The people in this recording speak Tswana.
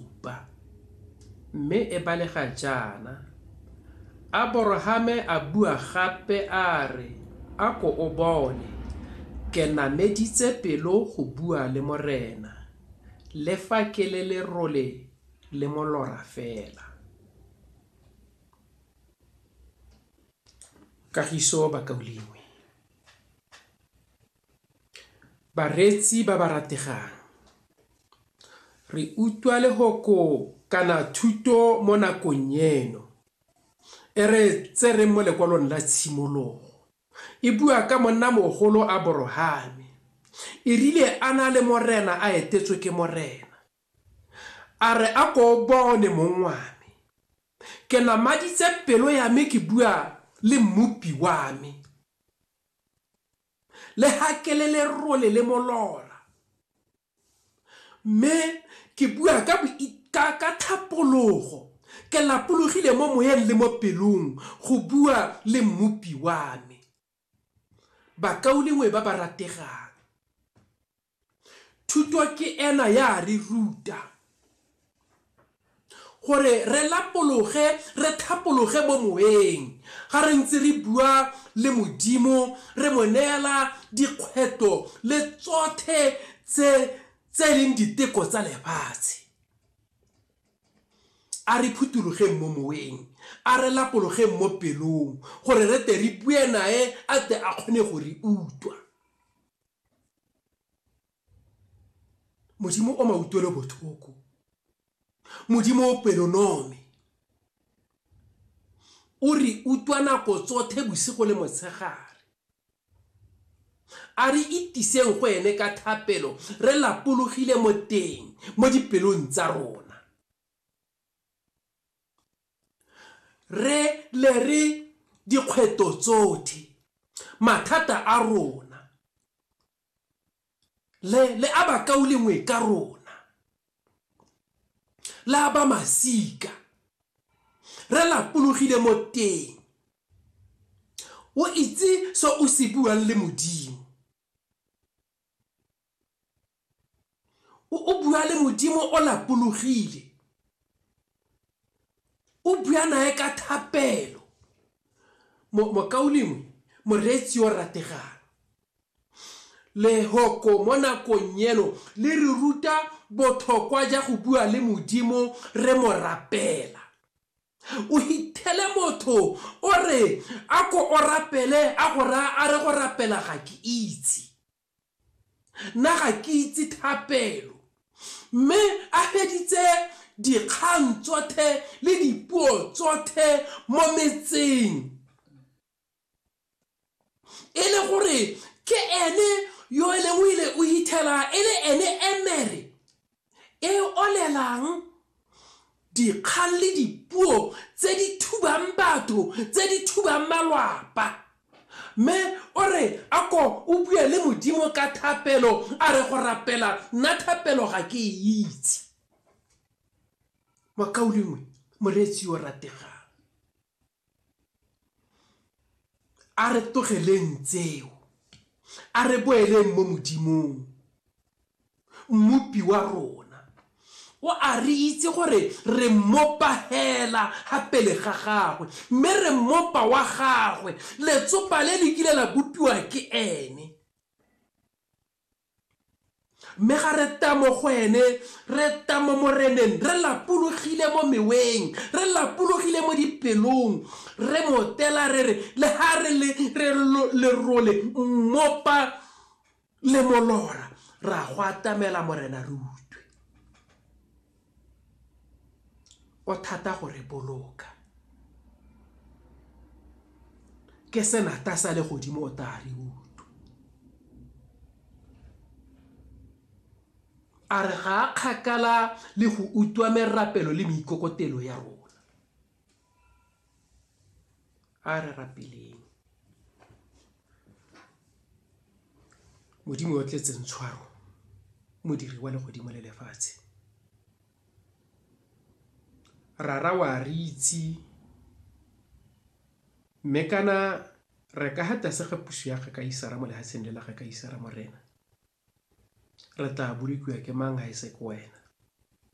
supa, mme e balega jaana, Aborahame a bua gape a re, A ko o bone, ke nameditse pelo go bua le Morena, le fa ke le lerole le molora fela. Kagiso Bakaulengwe. Bareetsi ba ba rategang, re utlwa lehoko kana thuto mo nakong eno e re e tsereng mo lekwalong la tshimologo. E bua ka monnamogolo Aborahame. E rile a na le morena a etetswe ke morena, a re a ko o bone mong wa me. Ke namaditse pelo ya me ke bua le mmopi wa me. Le ha ke le lerole le molora. Mme ke bua ka ka ka thapologo ke lapologile mo moyeng le mo pelong go bua le mmopi wa me bakaulengwe ba ba rategang Thuto ke ena ya re ruta gore re lapologe, re thapologe mo moweng ga re ntse re bua le Modimo, re mo neela dikgwetlho le tsothe tse tse leng diteko tsa lefatshe. A re phuthologeng mo moweng, a re lapologeng mo pelong gore re te re bue nae a te a kgone go re utlwa. modimo o mautlwelo botlhoko modimo o pelonome o re utlwa nako tsotlhe bosigo le motshegare a re itiseng go ene ka thapelo re lapologile mo teng mo dipelong tsa rona Re le re dikgweto tsotlhe, mathata a rona, le, le a bakaulengwe ka rona, le a ba masika, re lapologile mo teng. O itse se o se buang le Modimo. o bua le modimo o lapologile o bua nae ka thapelo mokaulengwe moreetsi o rategang lehoko mo nakong eno le re ruta bothokwa ja go bua le modimo re mo rapela O hithele motho o re a ko o rapele a go raya a re go rapela ga ke itse. Nna ga ke itse thapelo. Mme a feditse dikgang tsothe le dipuo tsothe mo metseng. e le gore ke ene yo e leng o ile o ithela e le ene emere e olelang dikgang le dipuo tse di thubang batho tse di thubang malwapa mme o re a ko o bue le modimo ka thapelo a re go rapela nna thapelo ga ke e itse makaulengwe moreetsi yo rategang A re tlogeleng tseo. A re boeleng mo Modimong, mmopi wa rona. O a re itse gore re mmopa hela ha pele ga gagwe, mme re mmopa wa gagwe. Letsopa le le kile la bopiwa ke ene. Mme ga re tla mo go ene, re tla mo Moreneng, re lapologile mo meweng, re lapologile mo dipelong, re mo tela re re, le ha re le re lerole mmopa le molora, ra go atamela Morena re utlwe. o thata go re boloka. Ke senatha sa legodimo o tla re utlwa. A re ga a kgakala le go utlwa merapelo le meikokotelo ya rona. a re rapeleng modimo o tletseng tshwaro modiri wa legodimo le lefatshe rara wa re itse mme kana re ka ga tlase ga puso ya ga ka isara mo lehatsheng le la ga ka isara morena re tla bolokiwa ke mang ga e se ke wena